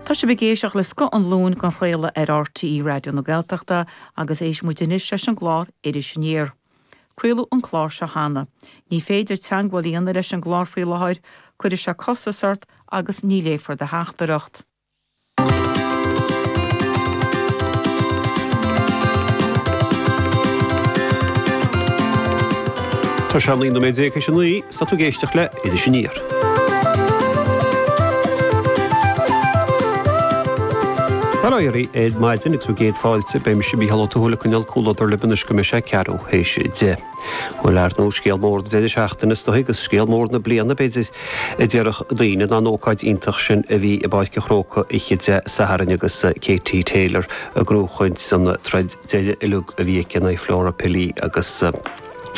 Tá sibh ag éisteacht le Scoth an Luain den chraoladh ar RTÉ Raidió na Gaeltachta agus éistfidh muid anois leis an gclár Iris Aniar. Craoladh an clár seo cheana. Ní féidir teangmháil a dhéanamh leis an gclár faoi láthair, cuirfidh sé costas ort agus ní léifear do theachtaireacht. Tá sé 19 nóiméad théis 9 Tá tú ag éisteacht le Iris Aniar. Bail ó Dhia oraibh ar maidin agus céad fáilte, beidh mise, Mícheál Ó Tuathail, ag coinneáil comhluadar libh anois go mbeidh sé ceathrú théis a deich. Bhuel, ar ndóigh scéal mór na deireadh seachtaine is dóigh, agus scéal mór na bliana, b'fhéidir, a déarfadh daoine, ná an ócáid iontach sin a bhí i bPáirc an Chrócaigh oíche Dé Sathairn agus Katie Taylor ag gnóthachaint san troid deiridh uilig a bhí aici in aghaidh Flora Pili agus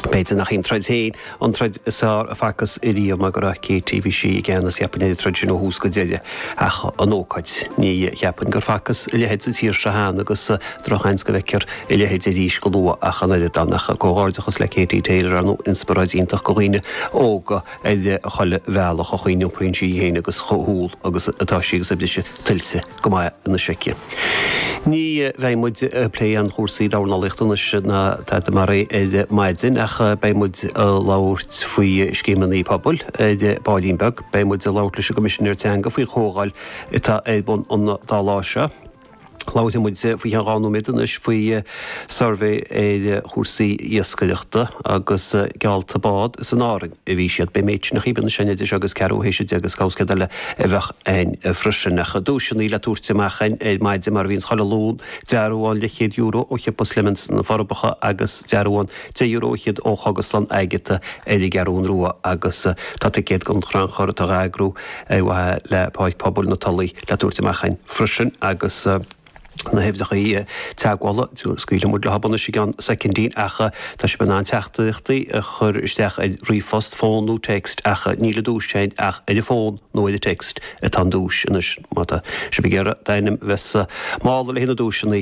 b'fhéidir nach í an troid féin an troid is fearr a facthas riamh mar go raibh Katie, bhí sí i gceannas, cheapfainn, ar an troid sin ó thús go deireadh. Ach an ócáid. Ní cheapfainn gur facthas a leithéid sa tír seo cheana agus drochsheans go bhfeicfear a leithéid arís go luath ach an oiread. Ann ach comhghairdeachas le Katie Taylor. An inspioráid iontach do dhaoine óga ar chuile bhealach. An chaoi a n-iompraíonn sí í féin agus chomh humhal agus atá sí agus a briseadh tuillte go maith anois aici. Ní bheidh muid ag plé aon chúrsaí dornálaíochta anois ná tada mar é ar maidin ach beidh muid ag labhairt faoi scéimeanna pobail ar baillín beag. Beidh muid ag labhairt leis an gCoimisinéir Teanga faoi chomhdháil atá ar bun an dá lá seo. Labhairfidh muid faoi cheann dhá nóiméad anois faoi suirbhé ar chúrsaí iascaireachta agus geallta bád is in Árainn a bhí siad. Beidh méid sin a choibhneas sin idir seo agus ceathrú théis a deich agus cá bhfios céard eile a bheadh againn freisin. Ach duaiseanna le tabhairt amach ar maidin mar a bhíonns chuile Luan, dearbhán leathchéad euro ó Shiopa Slemons sna Forbacha agus dearbhán €10 fhichead ó Chogaslann Agatha ar an gCeathrún Rua agus tá ticéad don chrannchur atá á eagrú ar mhaithe le Páirc Pobail na Tulaí le tabhairt amach againn freisin agus na huimhreacha teagmhála scaoilfidh muid libh anois i gceann soicindín ach tá sibh in ann teachtaireachtaí a chur isteach ar ríomhphost, fón nó text ach níl an duais féin ach ar an bhfón nó ar an text atá an duais anois má tá sibh ag iarraidh d'ainm a bheith sa mála le haghaidh na duaiseanna.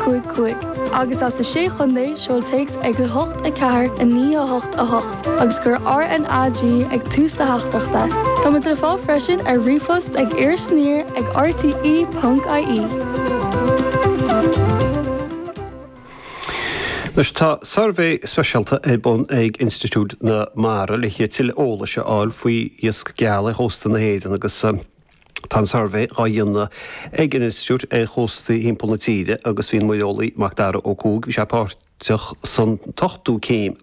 cúig, cúig. Agus as na Sé Chontae, seol téacs ag 8, 4, 9, 8, 8, agus cuir RNAG ag tús do theachtaireachta. Tá muid le fáil freisin ar ríomhphost ag irisaniar ag rte ponc ie. Anois tá suirbhé speisialta ar bun ag Institiúid na Mara le tuilleadh eolais a fháil faoi iasc geal ar chósta na hÉireann agus. Tá an suirbhé dhá dhéanamh ag an Institiúid ar chóstaí thimpeall na tíre agus bhí an muireolaí Mac Dara Ó Cuaig, bhí sé páirteach san ochtú céim.